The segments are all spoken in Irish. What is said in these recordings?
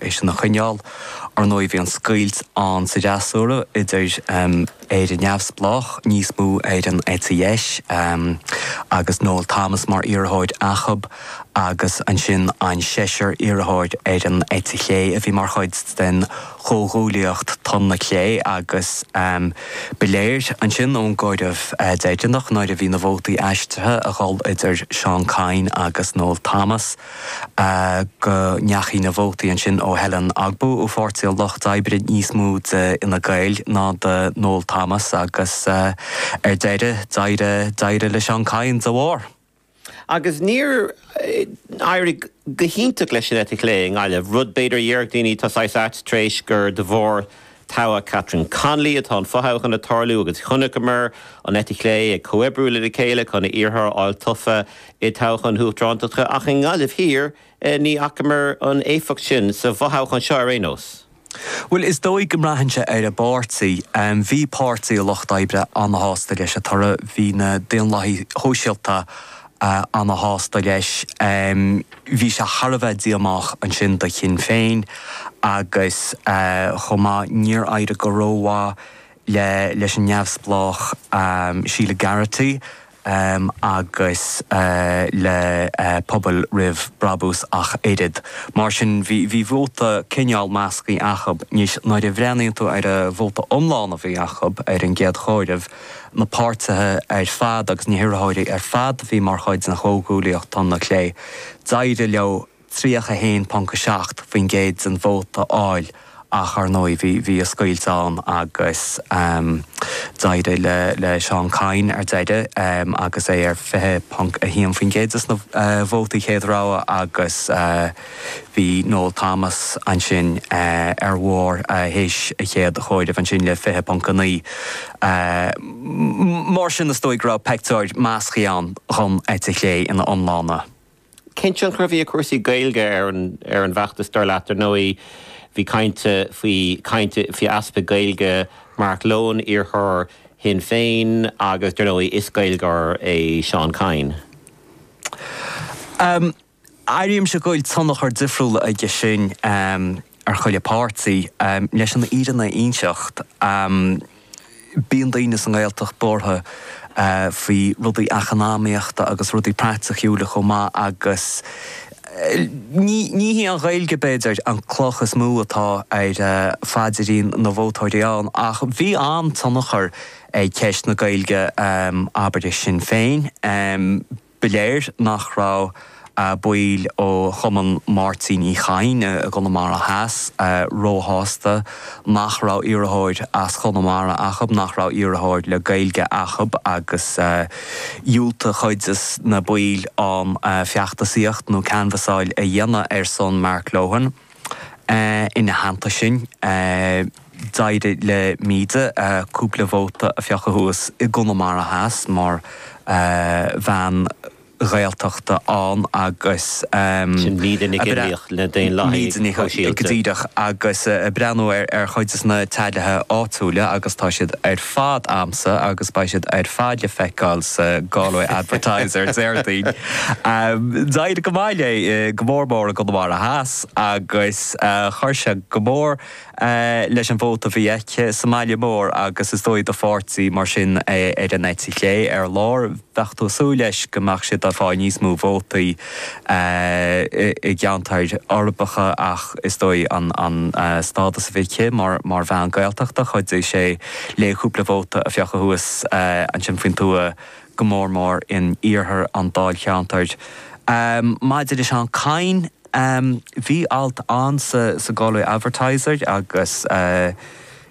é sin a choinneáil. Ar ndóigh, bhí an scoilt ann sa fhreasúra idir Éire Neamhspleách, níos mó ar an eite dheis, agus Noel Thomas mar iarrthóir acu, agus ansin an seisear iarrthóir ar an eite chlé a bhí mar chuid den chomhghuaillíocht Tonn na Clé agus ba léir ansin ón gcomhaireamh deireanach nuair a bhí na vótaí aistrithe a dhul idir Seán Kyne agus Noel Thomas go ndeachaigh na vótaí ansin ó Helen Ogbu ó Pháirtí an Lucht Oibre níos mó d'Fhine Gael ná do Noel Thomas agus ar deireadh, d'éirigh, d'éirigh le Seán Kyne dá bharr. Agus níor éirigh go hiontach leis an eite chlé i nGaillimh, rud b'fhéidir a dhéarfadh daoine, tá saghas ait tar éis gur de bharr toghadh Catherine Connolly, atá an fothoghchán ag tarlú, agus chonaiceamar an eite chlé ag comhoibriú lena chéile chun iarrthóir a fháil tofa i dtoghchán na hUachtaránachta ach i nGaillimh Thiar ní fhacamar an éifeacht sin, sa bhfothoghchán seo ar aon nós. Bhuel, is dóigh go mbraitheann sé ar an bpáirtí. Bhí Páirtí an Lucht Oibre an-sásta leis an toradh, bhí na Daonlathaigh Shóisialta an-sásta leis. Bhí sé thar a bheith díomách ansin do Shinn Féin agus chomh maith níor éirigh go rómhaith leis an neamhspleách Sheila Garrity agus le Pobal Roimh Bhrabús ach oiread. Mar sin bhí vóta cineál measctha acu. Anois nuair a bhreathnaíonn tú ar an vóta iomlán a bhí acu ar an gcéad chomhaireamh, na páirtithe ar fad agus na hiarrthóirí ar fad a bhí mar chuid den chomhghuaillíocht Tonn na Clé, d'éirigh leo 31.7% den vóta a fháil ach, ar ndóigh, bhí an scoilt ann agus d'éirigh le Seán Kyne ar deireadh agus é ar 20.1% de na vótaí chéad rogha agus, Bhí Noel Thomas ansin ar bharr théis a chéad chomhairimh ansin le 20.9. Mar sin is dóigh go raibh peictiúr measctha ann dhon eite chlé ina iomláine. Cén tionchar a bhí ag cúrsaí Gaeilge ar an bhfeachtas dar leat? Ar ndóigh bhí caint faoi caint faoi easpa Gaeilge Mark Lohan, iarrthóir Shinn Féin agus dar ndóigh is Gaeilgeoir é Seán Kyne. Airímse go bhfuil tionchar difriúil aige sin ar chuile páirtí. Leis an fhírinne a inseacht, bíonn daoine sa nGaeltacht buartha faoi rudaí eacnamaíochta agus rudaí praiticiúla chomh maith agus ní hé an Ghaeilge, b'fhéidir, an cloch is mó atá ar phaidirín na vótóirí ann. Ach bhí an-tionchar ag ceist na Gaeilge, abair, ar Shinn Féin. Ba léir nach raibh baill ó Chumann Mháirtín Uí Chadhain i gConamara Theas róshásta nach raibh iarrthóir as Conamara acu, nach raibh iarrthóir le Gaeilge acu agus dhiúltaigh cuid de na baill ann feachtasaíocht nó canvassáil a dhéanamh ar son Mark Lohan ina theannta sin. D'éirigh le Míde cúpla vóta a phiocadh suas i gConamara Theas mar bhean Ghaeltachta ann agus Sin Míde Nic Fhionnlaoich na Daonlathaithe Sóisialta. Díreach, agus ag breathnú ar chuid de na tallies áitiúla agus tá siad ar fad a'msa agus beidh siad ar fad le feiceáil sa Galway Advertiser Déardaoin. D'éirigh go maith léi, go mór mór i gConamara Theas agus chuir sé go mór leis an vóta a bhí aici sa mbaile mór agus is dóigh do pháirtí mar sin ar an eite chlé ar lár, bheadh tú ag súil leis go mbeadh siad ag fáil níos mó vótaí i gceantair uirbeacha ach is dóigh an stádas a bhí aici mar bhean Gaeltachta, chuidigh sé léi cúpla vóta a phiocadh suas ansin faoin tuath, go mór mór in iarthar an dáilcheantair. Maidir le Seán Kyne. Em, bhí alt ann sa, sa Galway Advertiser agus, eh,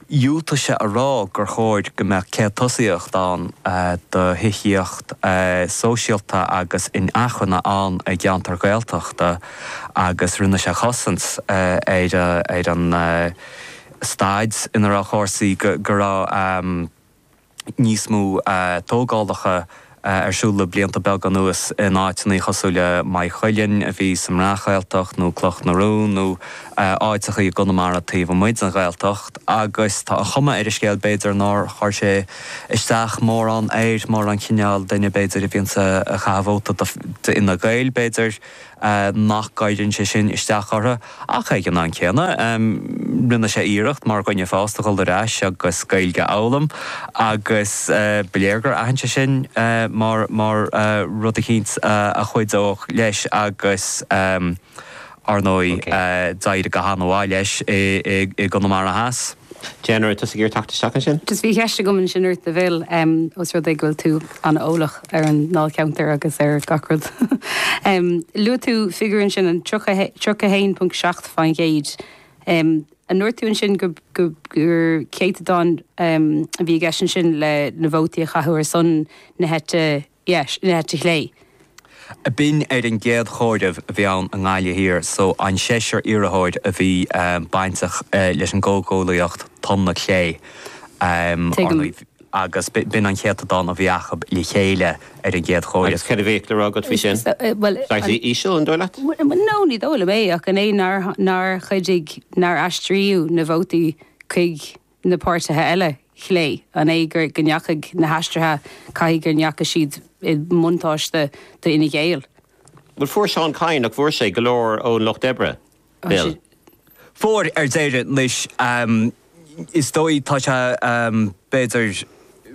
dhiúltaigh sé a rá gur chóir go mbeadh céad tosaíocht ann, eh, do thithíocht, eh, sóisialta agus inacmhainne ann i gceantair Ghaeltachta agus rinne sé cosaint, eh, ar, eh, ar an, eh, staid ina raibh cúrsaí, go, go raibh, em, níos mó tógálacha ar siúl le blianta beaga anuas in áiteanna cosúil le Maigh Cuilinn, a bhí sa mBreac-Ghaeltacht, nó Cloch na Rón, nó áiteacha i gConamara taobh amuigh den Ghaeltacht, agus tá an chuma ar an scéal, b'fhéidir, nár chuir sé isteach mórán air, mar an cineál duine, b'fhéidir, a bhíonns ag caitheamh vóta d'Fhine Gael, b'fhéidir. nach gcuireann sé sin isteach orthu ach ag an am céanna rinne sé iarracht mar dhuine fásta a dhul ar ais agus Gaeilge a fhoghlaim agus ba léir gur aithin sé sin mar rud eicínt a chuideodh leis agus ar ndóigh d'éirigh go han-mhaith leis i gConamara Theas. Donncha, tá tú ag iarraidh teacht isteach ansin. Just bhí ceist agam ansin ort a Phil, ós rud é go bhfuil tú an-eolach. ar an ndáilcheantar agus ar gach rud. Luaigh tú figiúr ansin an 31.7%. An ndúirt tú ansin gur céatadán a bhí i gceist ansin le na vótaí a caitheadh ar son na heite dheis, na heite chlé? B'in ar an gcéad chomhaireamh a bhí ann i nGaillimh Thiar so an seisear iarrthóir a bhí bainteach leis an gcomhghuaillíocht Tonn na Clé, Tuigim. Agus b'in an céatadán a bhí acu le chéile ar an gcéad chomhaireamh. Agus céard a bheadh le rá agat faoi sin? Slightly íseal, an dóigh leat? No, ní dóigh liom é, ach an é nár chuidigh nár aistríodh na vótaí chuig na páirtithe eile chlé? An é go ndeachaigh na haistrithe, caithfidh go ndeachaigh siad i mbuntáiste d'Fhine Gael? Bhuel, fuair Seán Kyne, nach bhfuair sé go leor ón Lucht Oibre? Fuair, ar deireadh. Anois, is dóigh, tá sé, b'fhéidir,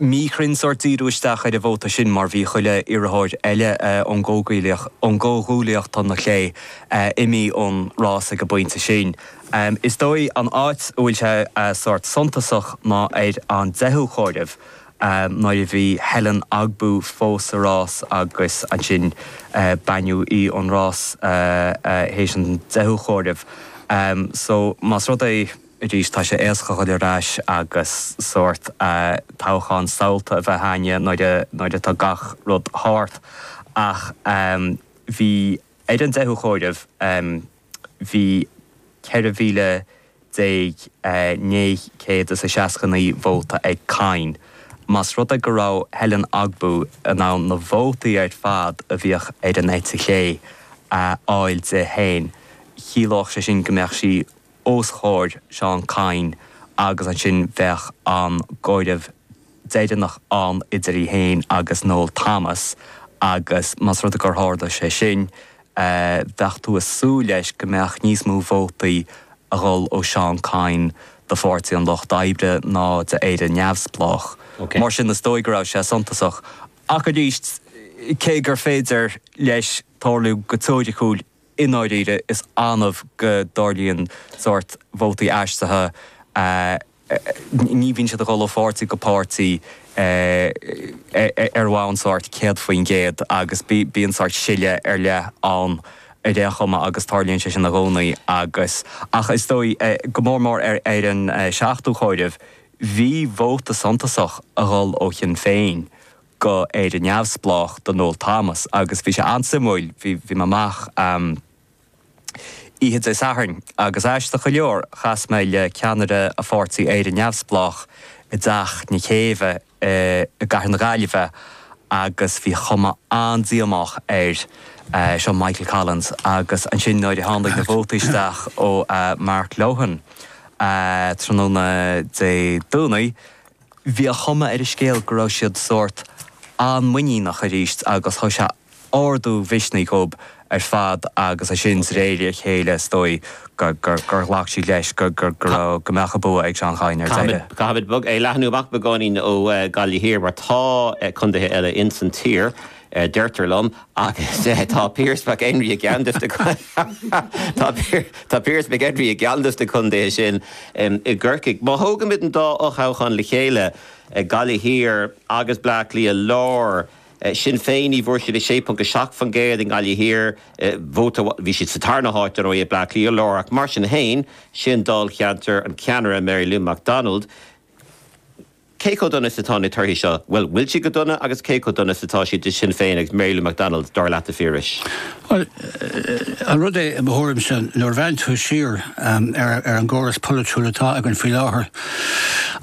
míchruinn sórt díriú isteach ar an vóta sin mar bhí chuile iarrthóir eile ón gcomhghuaillíocht, Tonn na Clé, imithe ón rás ag an bpointe sin. Is dóigh, an áit a bhfuil sé sórt suntasach ná ar an deichiú comhaireamh, nuair a bhí Helen Ogbu fós sa rás agus ansin baineadh í ón rás théis an deichiú comhaireamh. So, más rud é, arís, tá sé éasca a dhul ar ais agus sórt toghchán samhalta a bheith againne nuair atá gach rud thart ach bhí, ar an deichiú comhaireamh, Bhí 14,969 vóta ag Kyne. Más rud é go raibh Helen Ogbu in ann na vótaí ar fad a bhí ar an eite chlé a fháil di féin, chiallódh sé sin go mbeadh sí os comhair Seán Kyne agus ansin bheadh an comhaireamh deireanach ann idir í féin agus Noel Thomas agus más rud é gur tharla sé sin, bheadh tú ag súil leis go mbeadh níos mó vótaí a dhul ó Seán Kyne do Pháirtí an Lucht Oibre ná d'Éire Neamhspleách. Mar sin is dóigh go raibh sé suntasach. Ach arís, cé gur féidir leis tarlú go teoiriciúil, i ndáiríre is annamh go dtarlaíonn sórt vótaí aistrithe. ii, ní bhíonn siad ag dul ó pháirtí go páirtí ar bhonn sórt 100% agus bíonn sórt sileadh ar leith ann ar aon chuma agus tarlaíonn sé sin i gcónaí agus, ach is dóigh, go mór mór ar an seachtú comhaireamh, bhí vóta suntasach a dhul ó Shinn Féin go Éire Neamhspleách do Noel Thomas agus bhí sé an-suimiúil, bhí, bhí mé amuigh. Oíche Dé Sathairn, agus aisteach go leor, chas mé le ceannaire Pháirtí Éire Neamhspleách i dTeach na Céibhe i gcathair na Gaillimhe agus bhí cuma an-díomách air. Seo Michael Collins agus ansin nuair a tháinig na vótaí isteach ó Mark Lohan tráthnóna Dé Domhnaigh, Bhí a chuma ar an scéal go raibh siad sórt an-muiníneach arís agus thug sé ardú misnigh dhóib ar fad agus ansin de réir a chéile is dóigh gur ghlac siad leis go mbeadh an bua ag Seán Kyne ar deireadh. Caithfimid é a leathnú amach beagáinín ó Ghaillimh Thiar mar tá contaetha eile insan tír. a deirtear liom, agus tá Piaras Mac Enrí tá Piaras Mac Enrí i gceann dos na contaetha sin i gCorcaigh. Má thógaimid an dá fhothoghchán le chéile, Gaillimh Thiar agus Bleá Cliath Láir, Sinn Féin, ní bhfuair siad ach 6.7% i nGaillimh Thiar, bhí siad sa tarna háit, ar ndóigh, i Bleá Cliath Láir, ach mar sin féin, sin dáilcheantar an cheannaire, Mary Lou McDonald. Cé chomh dona is atá na torthaí seo? Bhuel, an bhfuil siad go dona agus cé chomh dona is atá siad do Shinn Féin agus Mary Lou McDonald, dar leat, a Phiarais? Bhuel, an rud é, i mo thuairimse, nuair a bhreathnaíonn tú siar ar an gcóras polaitiúil atá againn faoi láthair,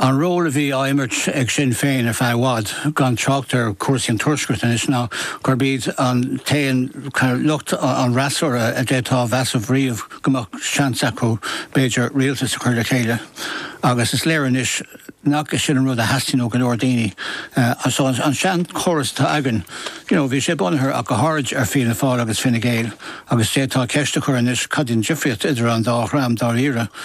an ról a bhí á imirt ag Sinn Féin ar feadh i bhfad, gan trácht ar chúrsaí an Tuaiscirt anois, ná gurb iad an t-aon lucht an fhreasúra a d'fhéadfá a mheas ariamh go mbeadh seans acu, b'fhéidir, rialtas a chur le chéile. Agus is léir anois. nach é sin an rud a theastaíonn ó go leor daoine? So an seanchóras atá againn, you know, bhí sé bunaithe ach go háirid ar Fianna Fáil agus Fine Gael agus d'fhéadfá ceist a chur anois cad í an difríocht idir an dá dhream dáiríre?